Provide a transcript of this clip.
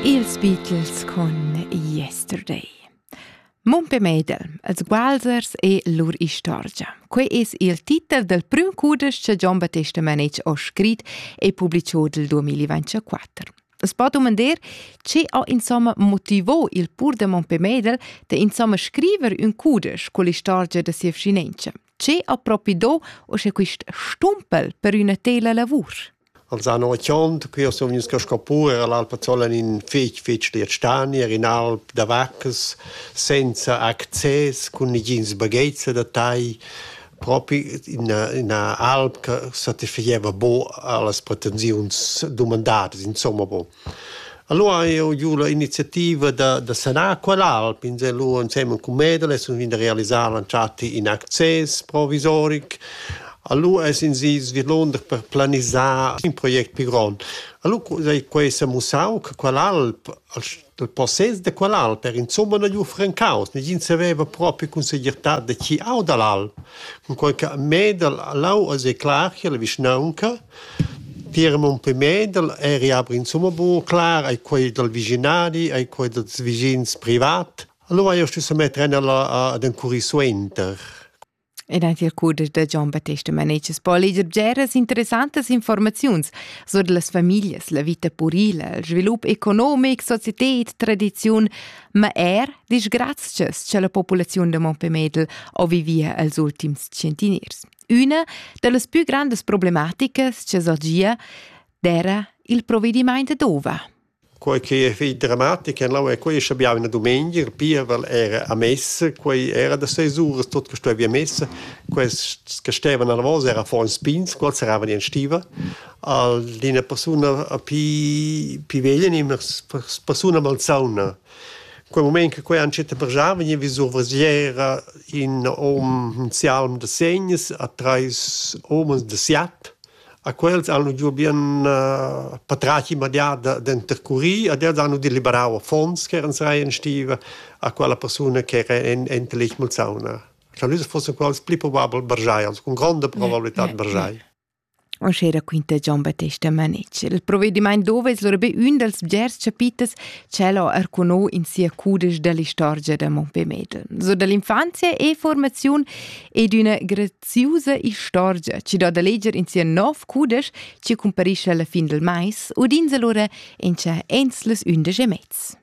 Ils Beatles con Yesterday. Mumpe Medel, els Walzers e lur istorgia. Quei es il titel del prüm cudesch che Gian Battesta Manetsch ho scrit e publiciò del 2024. Es po dumandar, che ha insomma motivò il pur de Mumpe Medel de insomma scriver un cudesch con l'istorgia de sia vcinenza. Che ha propi do o sche quist stumpel per üna tela lavur? Els han ochiond, ch'jeu sun vegnius ca scapu, era l'Alpazzola in fetg, fetg schliet stani, era in alp da vaccas, senza access, cun negins baghetgs da tai, propi ina, ina alp che satisfageva buca allas pretensiuns dumandadas, insomma buca. Alura hai eu giù la iniziativa da da sanar quell'alp inselù insemen cun Medel e sun ven da realisar l'entschatta in access provisoric. Alura es insi svillunder per planisar ün project pi grond. Alura cu sai quai s'ha mussau che quell'alp il possess da quell'alp era insumma na gnü francaus. Negin saveva propi cun segirtà da chi au da l'alp. Cunquai cha Medel ha lau as è clar chi ha la vischnaunca Tier Mumpé Mendel eri aber insumma buca clar, ei quei dal vischinadi, ei quei dals vischins privat. Allora hai io stusso metter ella ad encurir suenter. E da tier cuder da Gian Battesta Manetschas Polliger bgeras interessantas informaziuns sur las famiglias, la vita purila, il svilup economic, societet, tradiziun, ma er disgrazchas cha la populaziun da Montpellier o vivia als ultims tschientiniers. Üna da las pü grandas problematicas cha sorgia d'eira il provedimaint d'ova. Quei che è fich drammatic en lau è quei che abbiamo una domenica, il pievel era a messa, quei era da seis uras tot che stueva messa, questi che stevano alla voce era fuori in spins, quels eravano in stiva. D'ina persona più, più veglia, una persona malsauna Quei mument che quei entschiet brsar vegniva vis survesiera in hom in sialm da segns a treis homens da siat. A quels han giu bien eh, patratg immediat da- d'intercurir ed els han udì liberau affons ch'eran serai en stiva a quella persuna ch'era en- enta letg malsauna. Scha nus fussen quels pli probabel brsai, also cun gronda probabilitad brsai. Uschè raquinta Gian Battesta Manetsch. Il provedimaint dovess lura be ün dals bgers chapiters ch'el ha arcuno in sia cudesch da l'istorgia da Mompé Medel. So da l'infanzia e formaziun e d'üna graziusa istorgia chi do da leger in sia nov cudesch chi cumparisce alla fin del mais, udinsa lura in cha ens les ündesch e mezz.